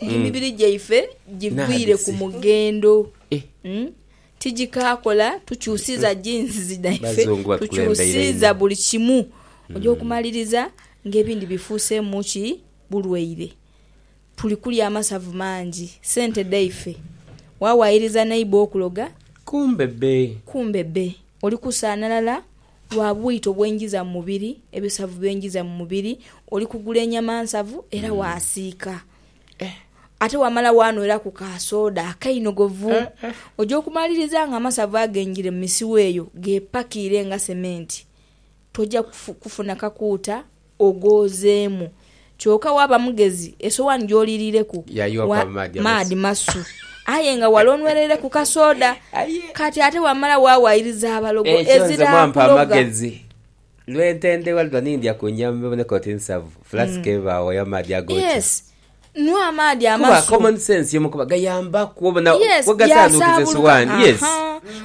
Eh, Emibiri gyaife giviire ku Nabisi. mughendo. Eh. Mm. Tigikaakola, tukyusiiza jinsizi dhaife, Bazungu batukulembeire tukyusiiza inho. buli kimu. Oja okumaliriza ng'ebindi bifuuseemu ki? Bulwaire. Tuli kulya amasavu mangi, sente dhaife. Waawaayiriza neighbour okuloga, Kumbe bbe. kumbe bbe. Oli kusaanalala Lwa bwito bwe njiza mu mubiri, ebisavu bye njiza mu mubiri, oli kugula enyama nsavu era waasiika. Ate wamala waanweraku ka sooda akainogovu. Oja okumaliriza ng'amasavu agenjire mu misiwa eyo geepakiire nga sementi. Toja kufuna kakuuta ogoozeemu. Kyoka waaba mugezi, esowaani gy'oliiriireku wa maadhi masu, aye nga wale onweleire ku kasooda. Kati ate wamala waawaayiriza abalogo ezira kuloga. Lwe ntendebwa lulwa nindya ku nnyama eboneka oti nsavu, fulasiki ebaawo ey'amaadhi ag'ookya. Nwa amaadhi amasu. Kuba common sense yomu kuba gayambaku obona bwegasanhukiza esowani. Yes.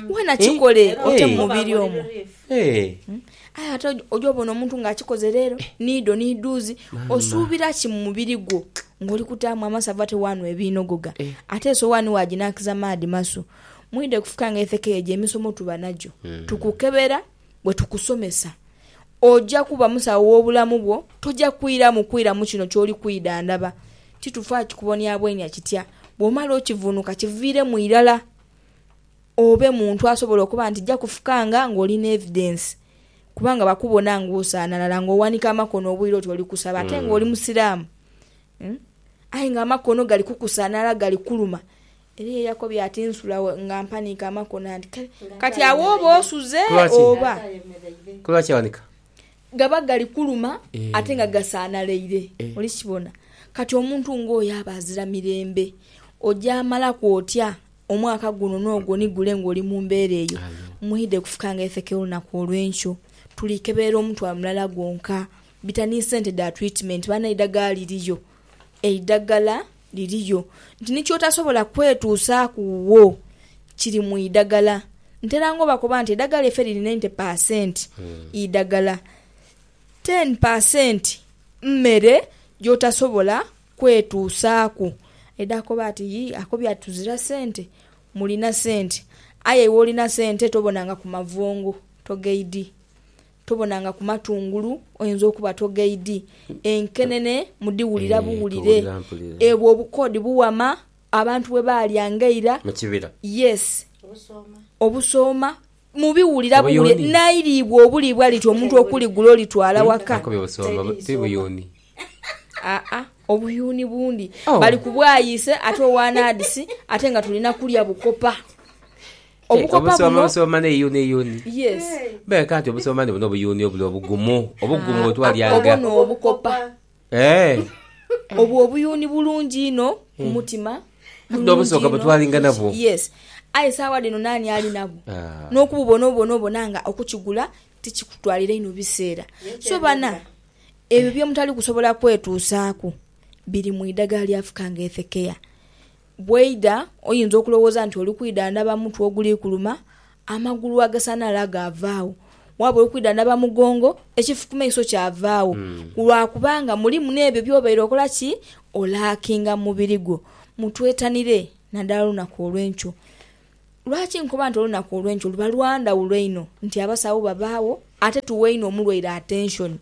Wena kikole ote mumubiri omwo. Aye ate oja obona omuntu nga akikoze leero niidho niidhuuzi. Osuubira ki mumubiri gwo nga oli kutaamu amasavu ate wanhwa ebinoghoga. Ate esowani waginakiza maadhi masu. Mwidhe kufuka nga etheka eyo gyemisomo tuba nagyo. Tukukebera bwetukusomesa. Oja kuba musawo w'obulamu bwo. Toja kwiramu kwiramu kino ky'oli kwidhandhaba. Ti tufa kikuboniabwonia kitya. Bw'omala okivunuka kiviiremu irala obe muntu asobola okuba nti ja kufukanga ng'oli n'evidence. Kubanga bakubona ng'osaanalala, ng'owanika amakono obwire oti oli kusaba ate ng'oli Musiraamu. Aye ng'amakono gali kukusaanala, gali kukuluma. Eliya yakobye ati, Nsula wo nga mpaniike amakona nti, Kale, kati agho oba osuze oba. Ku lwaki aghanika? Gaba gali kuluma ate nga gasaanaleire. Oli kibona? Kati omuntu ng'oyo aba azira mirembe. Ojaamalaku otya omwaka guno n'ogwo ni gule ng'oli mu mbeera eyo? Mwidhe kufuka nga ifeke olunaku olw'enkyo tuli keberera omutwalo mulala gwonka. Bita ni sente dha twitimeenti. Banae eidhagala liriyo? Eidhagala Liriyo, nti ni kyotasobola kwetuusaaku wo kiri mu idagala. Ntera nga obakoba nti edagala ife liri nainte paasenti idagala, teni paasenti mmere gyotasobola kwetuusaaku. Aidha akoba ati yii ako byatuzira sente, mulina sente. Aye iwe olina sente tobonangaku mavongo, togaidi. Tobona nga ku matungulu oyinza okuba togaidi, enkenene mudhiwulira buwulire. Ebwo obukoodi buwama abantu bwe baalya ng'eira. Yes. Obusooma mubiwulira buwulire. Nairiibwa obuliibwa liti omuntu okuligula olitwala waka. Aa, obuyuuni bundi. Bali ku bwayiise ate owa nadisi ate nga tulina kulya bukopa. Obukopa buno beka nti obusoomani buno obuyuuni obuli obugumu obugumu ah, bwetwalyaga obwo n'obukopa eh. obwo obuyuuni bulungi inho ku hmm. mutima n'obusooka bwetwalinga nabwo yes aye saawa dhino naani ali nabwo ah. n'okububona obona obona nga okukigula tikikutwalira inho biseera so bana ebyo byemutali kusobola kwetuusaaku biri mu idagala lyafuka nga ethekeya Bw'oidha, oyinza okulowooza nti oli kwidhandhaba mutwe oguli kuluma, amagulu agasanhala gaavaagho, waaba oli kwidhandhaba mugongo, ekifukimaiso kyavaagho, lwa kubanga mulimu n'ebyo by'obaire okola ki? Olaakinga mu mubiri gwo. Mutwetanire naddala olunaku olw'enkyo. Lwaki nkoba nti olunaku olw'enkyo luba lwa ndhawulo einho nti abasawo babaagho ate tuwa inho omulwaire atenshoni?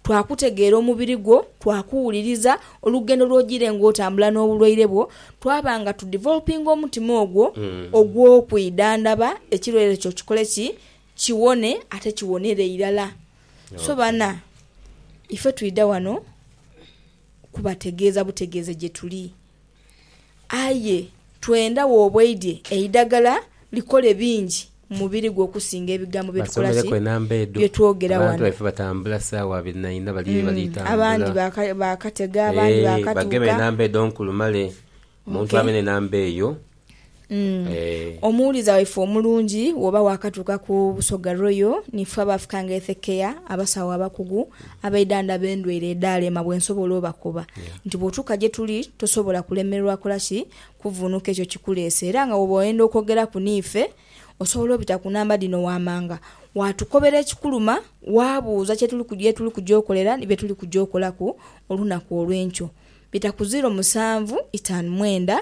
twakutegeera omubiri gwo, twakuwuliriza, olugendo lw'ogiire ng'otambula n'obulwaire bwo, twaba nga tudivolopinga omutima ogwo ogw'okwidhandhaba ekirwaire kyo kikole ki? Kiwone ate kiwonere irala. So bana, ife twidha ghano kubategeeza butegeeze gyetuli. Aye twenda w'obweidhie eidagala likole bingi mu mubiri gwo okusinga ebigambo bye tukola ki, bye twogera ghano. Abandi baakatega, abandi baakatuuka. Mm. Eh. Omuwuliza waife omulungi woba wakatuuka ku Busoga Royal ni ffe abaafuka nga Ethe Care abasawo abakugu abaidhandhaba endwaire edhaalema bwe nsobola obakoba nti bw'otuuka gye tuli tosobola kulemererwa kola ki kuvvuunuka ekyo kikuleese era nga woba oyenda okwogeraku ni ffe osobola obita ku namba dhino waamanga waatukobera ekikuluma waabuuza kye tuli ye tuli kuja okolera ni bye tuli kuja okolaku olunaku olw'enkyo. Bita ku ziiro musanvu itaanu mwenda.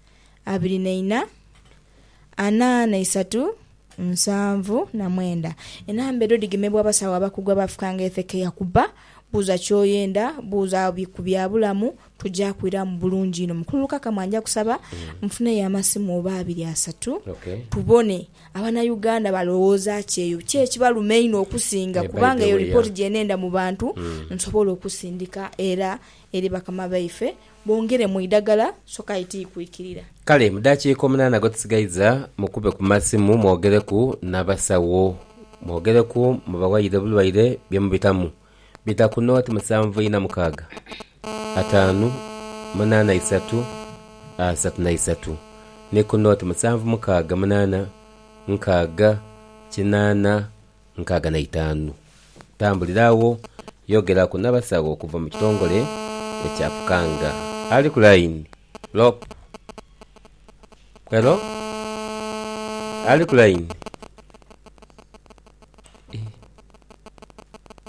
abiri na ina, ana na isatu, nsanvu na mwenda. Enamba edho dhigemebwa abasawo abakugu abaafukanga e Thekeia kuba, buuza ky'oyenda, buuza ku byabulamu, tuja kwiramu bulungi inho. Mukulu Lukakama nja kusaba nfuneyo amasimu oba abiri asatu tubone Abanauganda balowooza ki eyo, ki ekibaluma einho okusinga kubanga eyo lipooti gye nenda mu bantu nsobole okusindika era eri bakama baife. Bongere mu idagala soka aye tiikwikirira. Kale mu dakiika omunaana gwetusigaiza mukube ku masimu mwogereku nabasawo mwogereku mubawayire obulwaire byemubitamu bita ku noti musanvu ina mukaaga ataanu munaana isatu asatu na isatu ni ku noti musanvu mukaaga munaana nkaaga kinaana nkaaga na itaanu. Tambulira agho yogeraku n'abasawo okuva mu kitongole ekya Pukanga. Ali ku layini, Lop. Helo? Ali ku layini? Ih.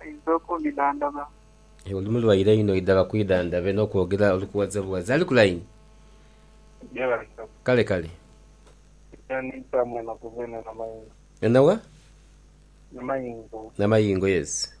aidha okundidhandhaba. Oli mulwaire inho idha bakwidhandhabe n'okwogera oli kuwazabuwaza. Ali ku layini? Kale kale. Ena wa? Namayingo, yes.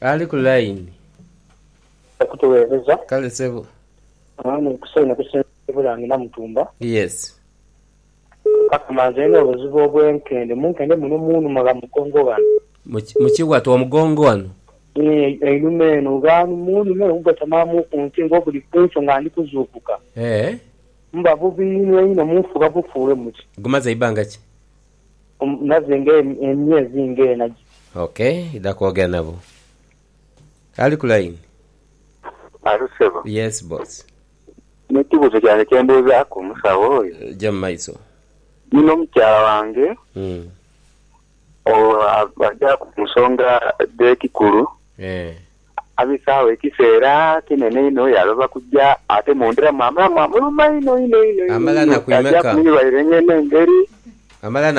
Ali ku line. Okutuwereza. Kale sebo. Mwami kusaino kusinzira ebula ndi namutumba. Yes. Kaka ma nze ndina obuzibu obwenkende munkende muno munuma gha mugongo ghano. Muki watu omugongo wano. Eeh einuma eno ghano munuma eno gugatamamu ku nti nga oguli kunkyo nga ndi kuzuukuka. Eeh. Muba bubi inho inho munfuga bufuule muti. Gumaze ibanga ki? Omunazi nga emyezi nga ena giti. Ok idha kwogera nabo. Ali ku line. Alo sebo. Yes boss. Nina ekibuzo kyange kyembuzaku omusawo oyo. Ja mumaiso. Nina omukyala wange aja kunsonga dhekikulu. Abisaawo ekiseera kinene inho, yaaloba kuja ate mundhira mwamala mwamuluma inho inho inho inho kyaja kumwirwaire ng'eno engeri.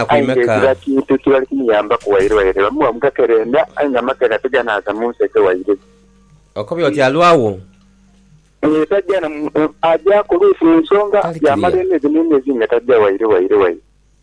Aye ng'eziba kintu kibali kumuyambaku wairwaire, bamuwa mu gakerenda aye nga amakerenda tiganaaza mu nseke waire. Okobye oti alwawo? Ee, taja na, ajaku oluusi mu nsonga yaamala emyezi n'emyezi nga taja waire waire waire.